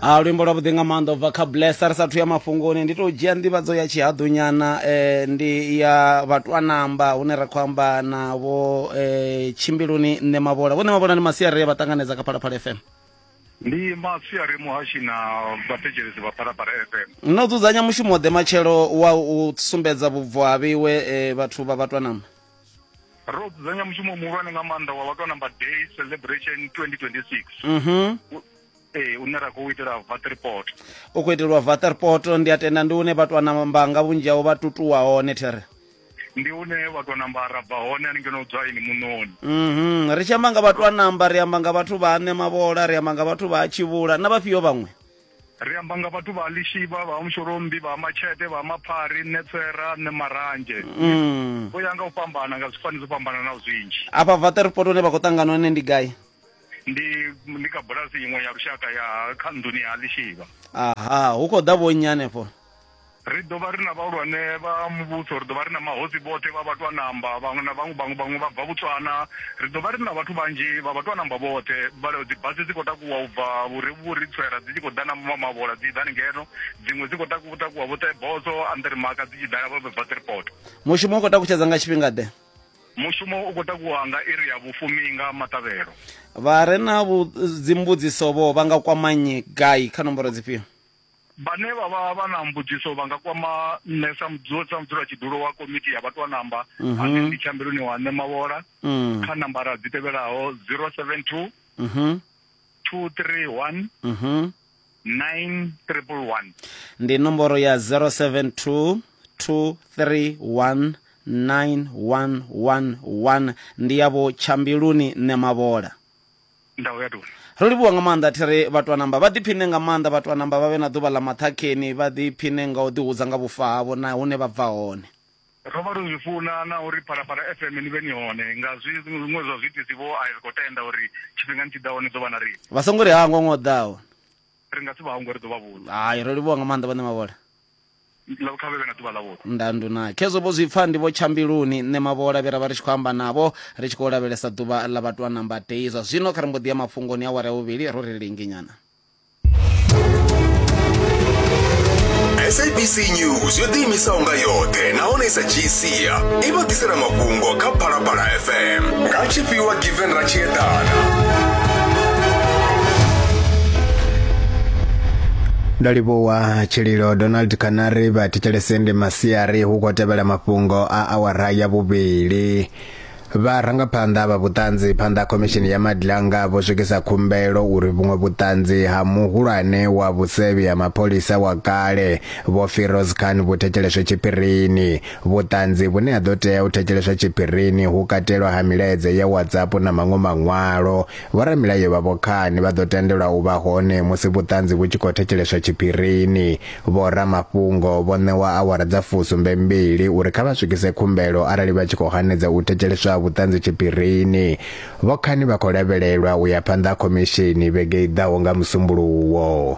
a luimbo lwa vhuḓi nga maanḓa ubva kha blessa ri sathu ya mafhungoni ndi tou dzhia nḓivhadzo ya tshihaḓunyana eh, ndi ya vhatwanamba hune ra khou amba na vho eh, tshimbiluni nṋe mavhola vho nṋe mavhola ndi masiari vha ṱanganedza kha phalaphala fm ndi masiari muhashi na vhathetshelesi vha phalaphala fm no dzudzanya mushumo ḓe matshelo wa u sumbedza vhubvo ha vhiwe eh, vhathu vha vhatwanamba ro dzudzanya mushumo muhulwane nga maanḓa wa vhathu number day celebration 2026 mhm ee une ra khou itela vatriport u khou itelwa vatriport ndi a tenda ndi une vhathu a namba nga vhunzhi hao vha tutuwa hone there ndi une vhathu a namba ra bva hone ani ngeno dzwa ini munoni mhm ri tshi amba nga vhathu a namba ri amba nga vhathu vha ane mavhola ri amba nga vhathu vha a tshivhula na vhafhio vhaṅwe Ri amba nga vhathu vha Lishivha, vha Mushorombi, vha Matshete, vha Maphari, Netsera, ne Maranzhe. Mm. Vho ya nga u fhambana nga zwifani zwo fhambananaho zwinzhi. Afha Vaterpoto hune vha khou ṱangana hone ndi gai? Ndi ndi kha bulasi iṅwe ya lushaka ya kha nḓuni ya Lishivha. Aha, hu khou ḓa vho nnyi hanefho? ri ḓo vha ri na vhahulwane vha muvhuso ri ḓo vha ri na mahosi vhoṱhe vha vhatwa namba vhaṅwe na vhaṅwe vhaṅwe vhaṅwe vha bva vhutswana ri ḓo vha ri na vhathu vhanzhi vha vhatwa namba vhoṱhe dzi basi dzi khou takuwa u bva vhuri vhuri tswera dzi tshi khou ḓa na ma mavhola dzi ḓani ngeno dziṅwe dzi khou takuwa takuwa vho teboso andri maka dzi tshi ḓala vho bva tripot mushumo u khou takutshedza nga tshifhinga ḓe mushumo u khou takuwa nga iri ya vhufumi nga maṱavhelo vha re na dzimbudziso vho vha nga kwamanyi gai kha nomboro dzifhio Vhane vha vha vha na mbudziso vha nga kwama nṋe sa mudzula sa mudzulatshidulo wa komiti ya vhatwanamba Mhm. ane ndi tshiambeloni wa nṋe mavhola Mm. kha nambara dzi tevhelaho 072 Mhm. 231 Mhm. 9111 ndi nomboro ya 072 231 9111 ndi yavho tshambiluni nṋe mavhola ndaho ya doni ro livhuwa nga maanḓa thi ri vhatwanamba vha ḓiphine nga maanḓa vhatwanamba vha vhe na ḓuvha ḽa maṱhakheni vha ḓiphine nga u ḓihudza nga vhufa havho na hune vha bva hone ro vha ri zwi funa na uri phalaphala fm ni vhe ni hone nga zwi zwiṅwe zwa zwiitisi vho a ri khou tenda uri tshifhingani tshi ḓaho ni ḓo vha na riṋe vha songo ri hangwa ṅwe o ḓaho ri nga si vha hangwe ri ḓo vha vhudza hai ro livhuwa nga maanḓa vhaṋe mavhola Nda nduna khezwo vho zwi pfa ndi vho tshambiluni nṋe mavhola vhe ra vha ri tshi khou amba navho ri tshi khou lavhelesa ḓuvha ḽa vhathu a namba tei zwa zwino kha ri mbo ḓi ya mafhungoni a wara ya vhuvhili ro ri linginyana sabc news yo ḓiimisaho nga yoṱhe nahone sa gsia i vha ḓisela mafhungo kha phalaphala fm nga tshifhiwa given ra tshi eḓana nda livhowa Ah, tshililo donald kanari vha thetshelese ndi masiari hu khou tevhela mafhungo a awara ya vhuvhili vharangaphanḓa vha vhuṱanzi phanḓa khomishini ya madlanga vho swikisa khumbelo uri vhuṅwe vhuṱanzi ha muhulwane wa vhusevhi ha mapholisa wa kale vho firoz khan vhu thetsheleswe tshiphirini vhuṱanzi vhune ha ḓo tea u thetsheleswa tshiphirini hu katelwa ha milaedza ya whatsapp na maṅwe maṅwalo Vhoramilayo vha vhokhani vha ḓo tendelwa u vha hone musi vhuṱanzi vhu tshi khou thetsheleswa tshiphirini. Vhoramafhungo vho ṋewa awara dza fusumbe mbili uri kha vha swikise khumbelo arali vha tshi khou hanedza u thetsheleswa ha vhuṱanzi tshiphirini. Vhokhani vha khou lavhelelwa u ya phanḓa ha khomishini vhege i ḓaho nga Musumbuluwo.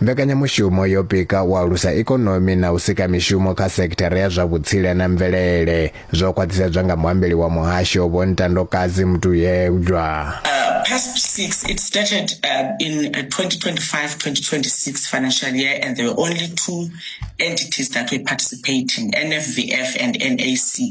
Mbekanyamushumo yo pika u alusa ikonomi na u sika mishumo kha sekithara ya zwa vhutsila na mvelele, zwo khwaṱhisedzwa nga muambeli wa muhasho Vho Ntandokadzi Mutuyegwa. PASP 6, it started in 2025-2026 financial year and there were only two entities that were participating, NFVF and NAC.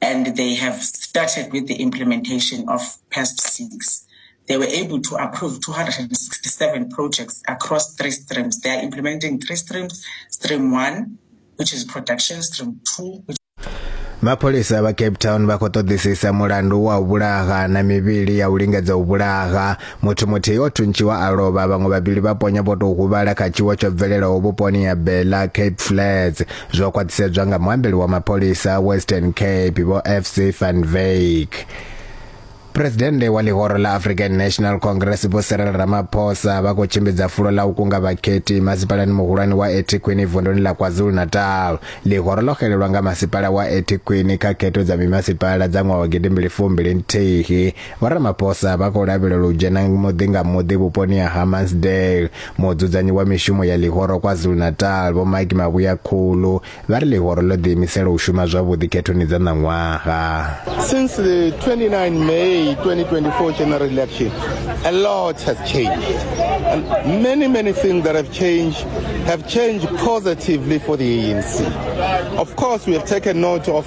and they have started with the implementation of PASP 6. They were able to approve 267 projects across three streams. They are implementing three streams, stream 1, which is production, stream 2, which mapholisa vha cape town vha khou ṱoḓisisa mulandu wa u vhulaha na mivhili ya u lingedza u vhulaha muthu muthihi o thuntshiwa a lovha vhaṅwe vhavhili vha ponya vho tou huvhala kha tshiwo tsho bvelelaho vhuponi ya bela cape flats Zwo khwaṱhisedzwa nga muambeli wa mapholisa a Western Cape vho FC van Wyk. Presidennde wa ḽihoro ḽa African National Congress vho Cyril Ramaphosa vha khou tshimbidza fulo ḽa u kunga vhakhethi masipalani muhulwane wa Ethekwini vunduni ḽa KwaZulu-Natal. Ḽihoro ḽo xelelwa nga masipala wa Ethekwini kha khetho dza mimasipala dza ṅwaha wa gidimbili fumbili nthihi Vho Ramaphosa vha khou lavhelelwa u dzhena muḓi nga muḓi vhuponi ha Hammansdale. Mudzudzanyi wa mishumo ya ḽihoro KwaZulu-Natal, Vho Mike Mavhuya Khulu, vha ri ḽihoro ḽo ḓiimisela u shuma zwavhuḓi khethoni dza ṋaṅwaha. Since the 29 May 2024 general election, a lot has changed. And many, many things that have changed have changed positively for the ANC. Of course, we have taken note of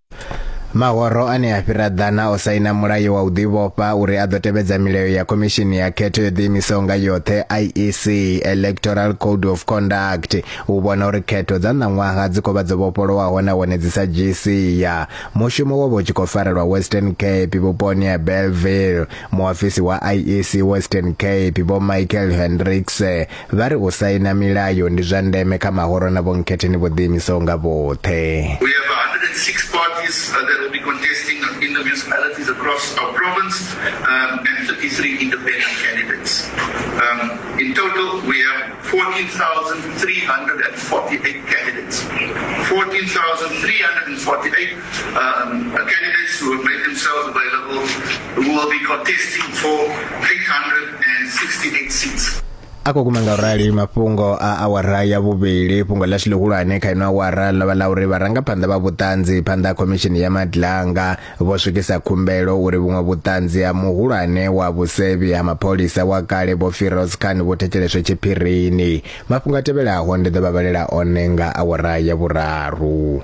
Mahoro ane a fhira ḓana o saina mulayo wa u ḓivhofha uri a ḓo tevhedza milayo ya khomishini ya khetho yo ḓiimisaho nga yoṱhe IEC Electoral Code of Conduct u vhona uri khetho dza ṋaṅwaha dzi khou vha dzo vhofholowaho nahone dzi sa dzhii sia mushumo wo vha u tshi khou farelwa Western Cape vhuponi ha Bellville muofisi wa IEC Western Cape vho Michael Hendricks Vha ri u saina milayo ndi zwa ndeme kha mahoro na vhonkhetheni vho ḓiimisaho nga vhoṱhe. We have 106 parties that will be contesting in the municipalities across our province and 33 independent candidates. In total we have 14,348 candidates. 14,348 candidates who have made themselves available who will be contesting for 368 seats. a khou guma nga u rali mafhungo a awara ya vhuvhili fhungo ḽashu ḽihulwane kha ino awara ḽo vha ḽa uri vharangaphanḓa vha vhuṱanzi phanḓa ha khomishini ya madlanga vho swikisa khumbelo uri vhuṅwe vhuṱanzi ha muhulwane wa vhusevhi ha mapholisa wa kale vho firoz khan vhu thetsheleswe tshiphirini mafhungo a tevhelaho ndi ḓo vha vhalela one nga awara ya vhuraru